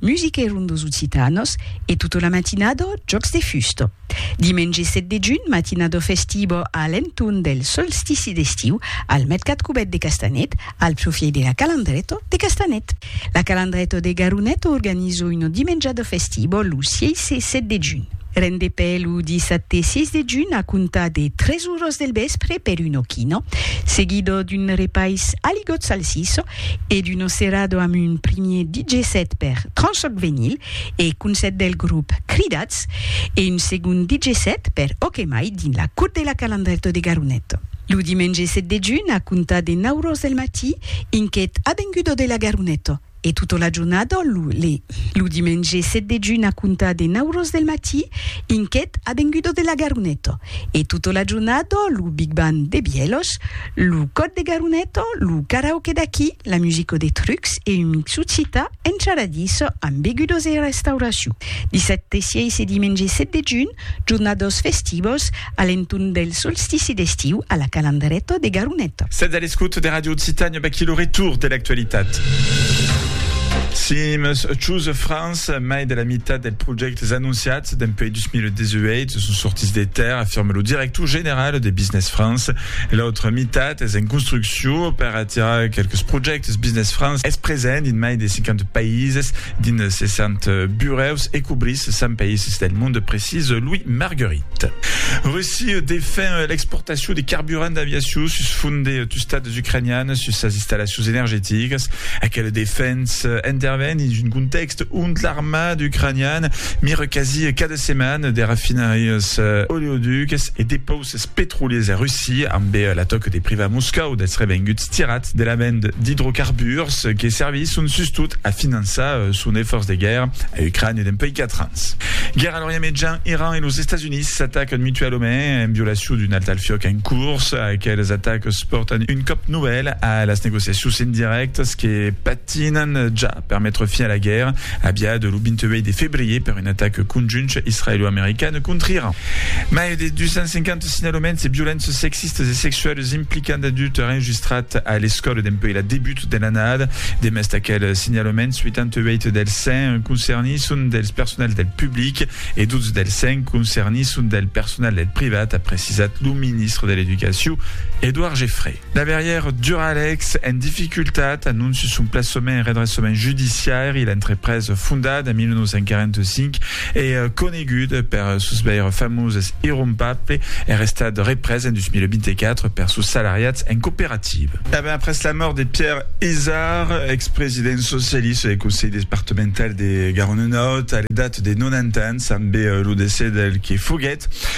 Musica e rondos occitanos e tota la matinada jòcs de fusta. Dimenge 7 de junh, matinada festiva a l'entorn del solstici d'estiu al mercat cubèt de Castanet, al profièit de la Calandreta de Castanet. La Calandreta de Garonet organiza una dimenjada festiva lo 6 e 7 de junh. Rendepè lo dissabte 6 de junh a comptar de 3 oras del vèspre per una quina, seguida d'un repais a ligòt salsissa, e d'Uno Cerrado amb un primier DJ set per Tranchoc Venyl e concèrt del grop Cridats e un segond DJ set per Ok Mai dins la Cour de la Calandrèto de Garonet. Lo dimenge set de junh a comptar de nau ros del matí un quet avengudo de la Garonet e tota la jornada lo. Lo dimenge set de junh a comptar de nau ros del matí un quet avengudo de la Garonet e tota la jornada lo Big Band de Bièlhos, Lo còd de Garuneto, lo karaoke d'aquí, la musico de Trucs e un mixu cita encharadís amb begudos e restauracion. Dissabte 6 e dimenge 7 de junh, jornados festivos a l'entorn del solstici d'estiu a la Calandreto de Garuneto. Sètz a l'escòt de Radio Occitània, vaquí lo retour de l'actualitat. Sims Choose France, mai de la mitat dels projèctes anonciats dempuèi 2018 son sortits de tèrra, afirma lo director general de Business France. E l'autra mitat es en construccion per atirar quelques projèctes. Business France es present dins mai de 50 païses, dins 60 burèus e cobrís 100 païses del monde, precís Louis Marguerit. Russia defen l'exportacion de carburant d'aviacion sus font de tustats ucranianes sus sas installacions energeticas. Aquela defensa interven dins un contèxt ont l'armada ucraniana mira quasi cada setmana de rafinarias oleoducas e depauses. Es petroliers e russi, ambe l'atòc de privar Moscòu dels revenguts tirats de la vend d'idrocarburs que servisson sustot a finançar son efòrç de guèrra a Ucrània dempuèi 4 ans. Guèrra a l'Orient Mejan, Iran e los Estats Units s'atacan mutualament en violacion d'un alt al fiòc en curs. Aqueles atacs pòrtan un còp novèl a las negociacions indirèctas que patinan ja. per metre fin a la guèrra aviada lo 28 de febrier per un atac conjunt israelo-american còntri Iran. Mai de 250 signalaments de violences sexistas e sexualas implicant d'adultes enregistrats a l'escòla dempuèi la debut de l'annada. Demest d'aqueles signalaments, 88 dels 100 concernits son dels personals del public e 12 dels 100 concernits son del personal del privat, a precisat lo ministre de l'Educacion, Edouard Geffray. Laberièr Duralex en dificultat, anonci son plaçament en redressament judiciari, l'entrepresa fondada en 1945 e coneguda per sos veires famoses irrompable er estat represa en 2024 per sos salariats en cooperativa. E ben après la mòrt de Pierre Izard, expresident socialista del Conselh departemental de Garonne-Nòrd a l'edat de 90 ans, ambé lo decès del que foguèt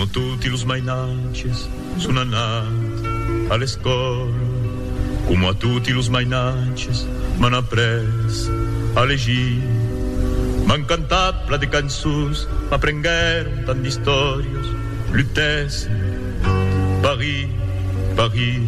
Coma toti los mainatges son anat a l'escòla, coma toti los mainatges m'an après a legir. M'an cantat pla de cançons, m'aprenguèron tant d'istòrias, lutèssen, Paris, Paris.